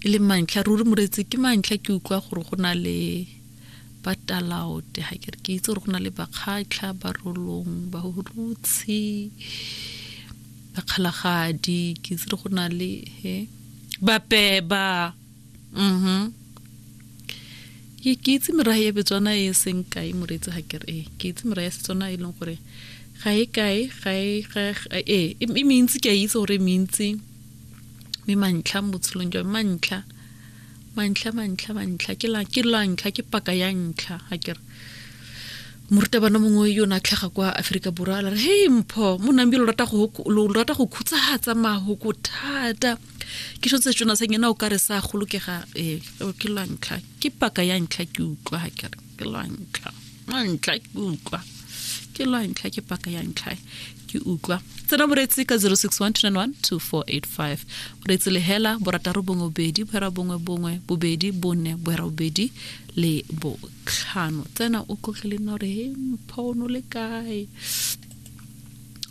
e le mantlha ruri moretsi ke mantlha ke utlwa gore go na le ba talaote ga ke re ke itse gore go na le bakgatlha barolong barutshi bakgalagadi ke itse go na le he bapeba mhm ke ke itse merae ya betswana e seng kae moreetsi ga ke re ke itse merae ya setswana e leng gore ga e kae ga e e mentsi ke a itse gore e mentsi mme mantlha mo botshelong jwa mantlha mantlha mantlha mantlha ke la ke la ntlha ke paka ya ntlha ga ke re morutabana mongwe yo ne a tlhaga kwa aforika borwa a re hey mpho mo nambi lo rata go lo rata go khutsahatsa mahoko thata ke sho tse tsona sa nyena o ka re sa golokega eh ke la ntlha ke paka ya ntlha ke utlwa ha ke re ke lwa ntlha lwa ntlha ke utlwa ke lwa ntlha ke paka ya ntlha ke utlwa tsena boreetsi ka 0612912485 boreetsi le hela borataro bongwe bobedi bohera bongwe bongwe bobedi bone bohera bobedi le botlhano tsena o tlotlile nna gore he mpha o no le kae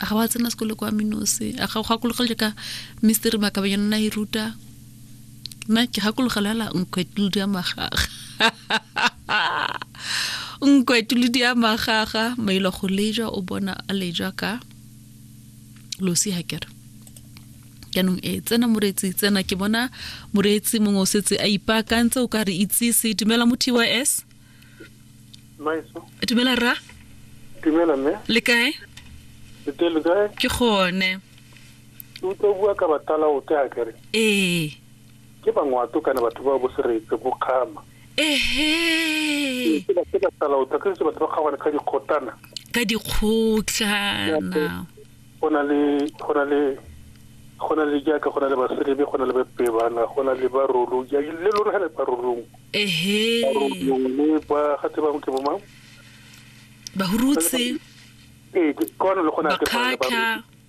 a ga wa tsena sekolo kwa minose a ga go gakologele ka mister makabanyana na e ruta nna ke gakologela hela nkgwetludu ya magaga nkwetuludi a magaga mailo go leja o bona a leja ka losi ga kere jaanong e eh, tsena moreetsi tsena ke bona moreetsi mongwe o setse a ipaakantse o ka re itsise dumela mo tys dumela rra dumela mme le kae ke gone utlwa bua ka batala o ke a kere ee Ke bangwato kana batho ba bo seretse bo kgama. Ehe. Ke ba ke ba sala o tla ke se batho ba kgabana ka dikgotana. Ka dikgotlana. Go na le go na le go na le jaaka go na le baselebe go na le bapebana go na le barolo ja le lona ga le barolong. Ehe. Barolong le ba ga tse bangwe ke bo mang? Bahurutse. Ee, ke kwana le gona ke bana ba. Bakhatlha.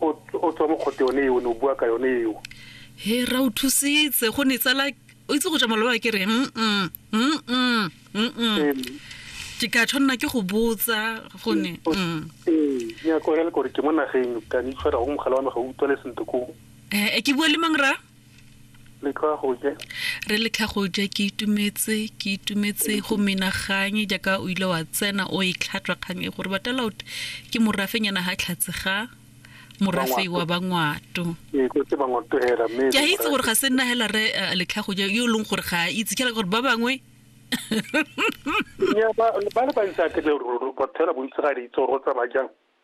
o o tswa mo kgote yone eo ne o bua ka yone eo he ra o thusitse go ne tsala o itse go ja maloba ke re mm, mm, mm, mm, mm, mm. Ee, ke ka tshwanela ke go botsa go ne mm. ee, nyako ya le kore ke mo nageng ka ne itshwara go mogala wa me ga o utlwale sentle koo Eh, eh, ke bua le mang ra letlhagoje re letlhagoje ke itumetse ke itumetse go menaganye jaaka o ile wa tsena o e tlhatwa kgang e gore batalaut ke morafenyana ga tlhatse ga morafe wa bangwato ee, ke a itse gore ga se nna hela re eh, letlhagoje yo e leng gore ga a itse ke gore ba bangwe ba le bantsi a ketle ruri bathela bontsi ga le itse gore go tsamaya jang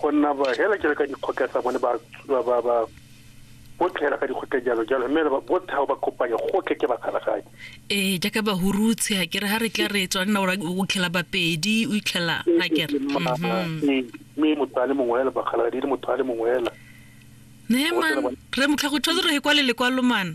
go nna ba hela jalo ka dikgotla tsa bone ba ba ba botlhe hela ka dikgotla jalo jalo mme ba botlhe ga ba kopanya gotlhe ke bakgalagadi ee jaaka ba hurutse a kere ha re tla re tswa nna ora o tlhela bapedi o itlhela a kere mme motho a le mongwe hela bakgalagadi le motho a le mongwe hela ne man re motlha go tshwanetse re he kwa le lekwalo mana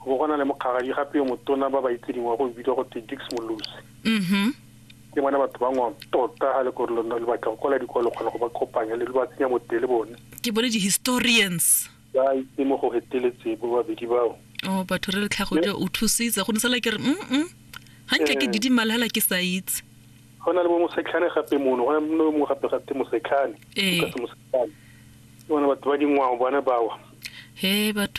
Go bo go na le mokgagadi gape yo motona ba ba itseding wa go bidiwa go te Dix Molosi. Mhm. Ke bona batho ba ngwang tota ga le gore lo nna lo batla go kwala dikwalo kgona go ba kopanya le lo ba tsenya bote le bone. Ke bone di-historians. Ba itse mo go heteletse bo babedi bao. Oh, batho re le tlhago ja o thusitse go ne sala ke re mm hantle ke didimala hela ke sa itse. Go na le bo mosetlhane gape mono go na le mongwe gape ga te mosetlhane. Ee. Lucas Mosetlhane. Ke bona batho ba dingwao bana bawa. He batho